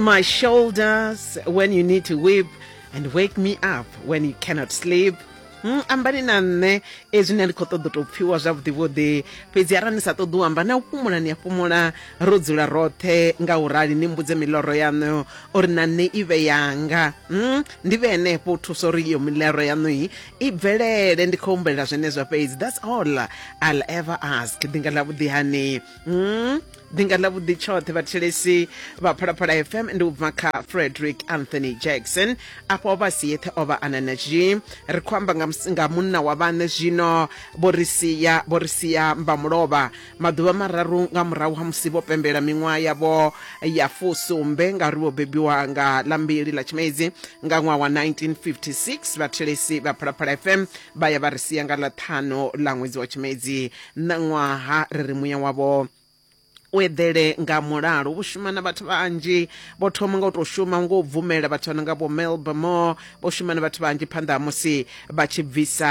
my shoulders when you need to weep and wake me up when you cannot sleep Hmm, ambani na nṋe ezwi ni a ndi khou ṱoḓa u tou pfhiwa zwavhuḓivhuḓi fhedzi arali ni sa ṱoḓi u amba na u fhumula ni a fhumula ro dzula roṱhe nga u rali ni mbudze miloro yaṋu uri na nṋe i vhe yanga Hmm, ndi vhe henefho u thusa uri iyo miloro yaṋu i i bvelele ndi khou humbulela zwenezwo fhedzi that's all i'll ever ask ḓinga ḽa vhuḓihani mm. ḓinga ḽa vhuḓi tshoṱhe vhathelesi vha phalaphala fm ndi u bva kha frederick anthony jackson afho vha si yeṱhe o vha ana na zhi ri khou amba nga munna wa vhaṋe zwino vho ri sia vho ri sia mbamulovha maḓuvha mararu nga murahu ha musi vho pembela miṅwaha yavho ya fusumbe ngauri vho bebiwa nga ḽa mbili ḽa tshimedzi nga ṅwaha wa 1956 vhathelesi vha phalaphala fm vha ya vha ri sia nga ḽa ṱhanu ḽa ṅwedzi wa tshimedzi ṋaṅwaha ri ri muya wavho u eḓele nga mulalo vho shuma na vhathu vhanzhi vho thoma nga u tou shuma ngo bvumela vhathu vha no nga vho melbamore vho shuma na vhathu vhanzhi phanḓa ha musi vha tshi bvisa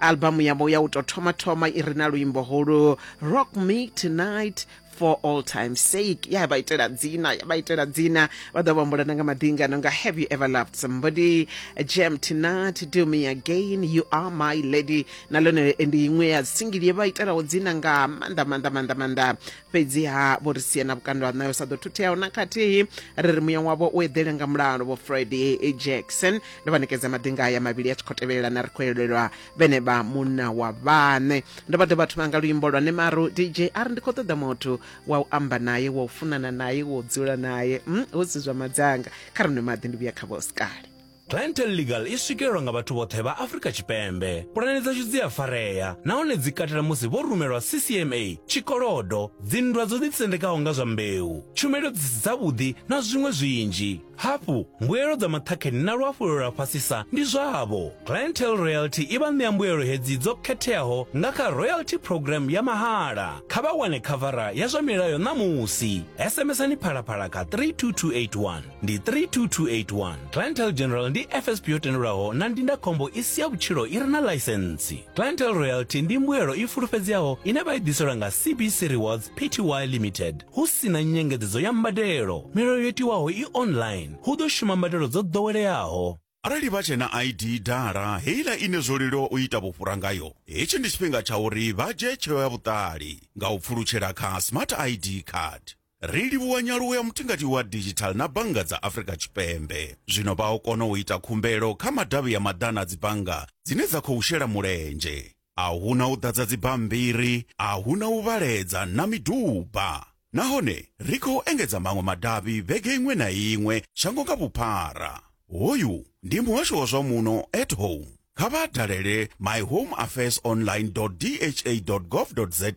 albamu yavho ya u tou thoma thoma i re na luimbo holu rock me tonight for all time sake ya vha itela dzina ya vha itela dzina vha ḓo vhambulana nga maḓinga no nga have you ever loved somebody jam tonight do me again you are my lady na lone ndi iṅwe ya singili ye vha itelaho dzina nga maanḓa maanḓa maanḓa maanḓa fhedziha vho ri sia na vhukando ha nayo sa ḓo thutheaho na khathihi ri ri muya wavho u eḓele nga mulalo vho friday jackson ndo vha ṋekedza maḓinga aya mavhili a tshi khou tevhelelana ri khou elelwa vhene vha munna wa vhaṋe ndo vha dovha thoma nga luimbo lwa nemaru dj ari ndi khou ṱoḓa muthu wa u amba naye wa u funana naye wa u dzula naye mm, hu si zwa madzanga kha ri nwe maḓi ndi vhuya kha vhosikale Clientele Legal i swikelelwa nga vhathu vhoṱhe vha Afrika Tshipembe. Pulane dzashu dzi a farea nahone dzi katela musi vho rumelwa CCMA, tshikolodo, dzinndwa dzo ḓitsendekaho nga zwa mbeu, tshumelo dzi si dzavhuḓi na zwiṅwe zwinzhi. Hafhu, mbuelo dza maṱhakheni na luhafhulelo lwa fhasisa ndi zwavho. Clientele Royalty i vha ṋea mbuelo hedzi dzo khetheaho nga kha Royalty Programme ya mahala. Kha vha wane khavara ya zwa milayo ṋamusi. SMSani Phalaphala kha 32281. Ndi 32281. Clientele General ndi FSP yo tendelwaho na ndindakhombo i si ya vhutshilo i re na ḽaisentsi. Clientele Royalty ndi mbuelo i fulufhedzeaho ine vha i ḓiselwa nga CBC Rewards Pty Limited. Hu si na nyengedzedzo ya mbadelo, milayo yo tiwaho i online, hu ḓo shuma mbadelo dzo ḓoweleaho. Arali vha tshe na ID dala, heiḽa ine zwo leluwa u ita vhufhura ngayo, hetshi ndi tshifhinga tsha uri vha dzhie tsheo ya vhuṱali nga u pfulutshela kha Smart ID Card. Ri livhuwa nyaluwo ya mutingati wa digital na bannga dza Afrika Tshipembe. Zwino vha o kona u ita khumbelo kha madavhi ya maḓana a dzibannga dzine dza khou shela mulenzhe. a hu na u ḓadza dzibammbiri, a hu na u vhaledza na miduba. Nahone ri khou engedza maṅwe madavhi vhege iṅwe na iṅwe shango nga vhuphara. Hoyu ndi muhasho wa zwa muno at home. Kha vha dalele myhomeaffairsonline.dha.gov.za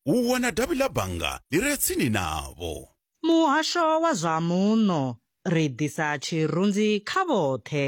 u wana davhi ḽa bannga ḽi re tsini navho. Muhasho wa zwa muno, ri ḓisa tshirunzi kha vhoṱhe.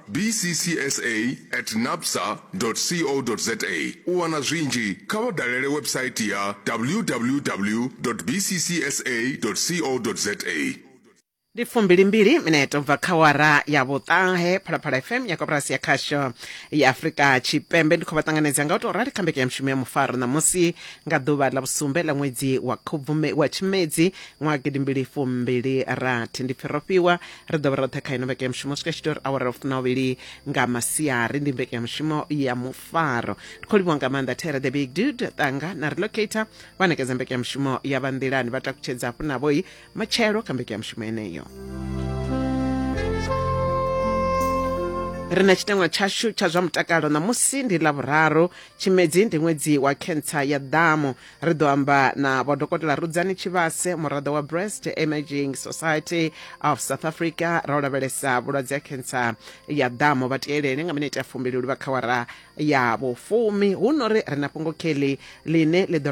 bccsa at napsa co za u wana zwinzhi kha vha dalele website ya www bccsa co za ndi fumbilimbili minete u bva kha wara ya vhuṱahe phalaphala fm ya koporasi ya khasho ya afurika tshipembe ndi khou vha ṱanganedza nga u tou rali kha mbekanya mushumo ya mufaro ṋamusi nga ḓuvha ḽa vhusumbe ḽa ṅwedzi wa khubvume wa tshimedzi ṅwaha gidimbili fumbili rathi ndi pfirofhiwa ri ḓo vha roṱhe kha ino mbekanyamushumo swika tshito uri awara funa uvhili nga masiari ndi mbekanyamushumo ya mufaro ri khou livhiwa nga maanḓa tere the big dude ṱanga na relocator vha nekedza mbekanyamushumo ya vha nḓilani vha takutshedza hafhu navhoi matshelo kha mbekanyamushumo yeneyo ri na tshitangwa tshashu tsha zwa mutakalo ṋamusi ndi ḽa vhuraru tshimedzi ndi ṅwedzi wa khentsa ya ḓamu ri ḓo amba na vho dokotela rudzani tshivhase muraḓo wa breast emerging society of south africa ra u lavhelesa vhulwadze ha khentsa ya ḓamo vha tielele nga minete ya fumbili luvha khawara ya vhufumi hu no ri ri na fhungo kelly ḽine ḽi ḓo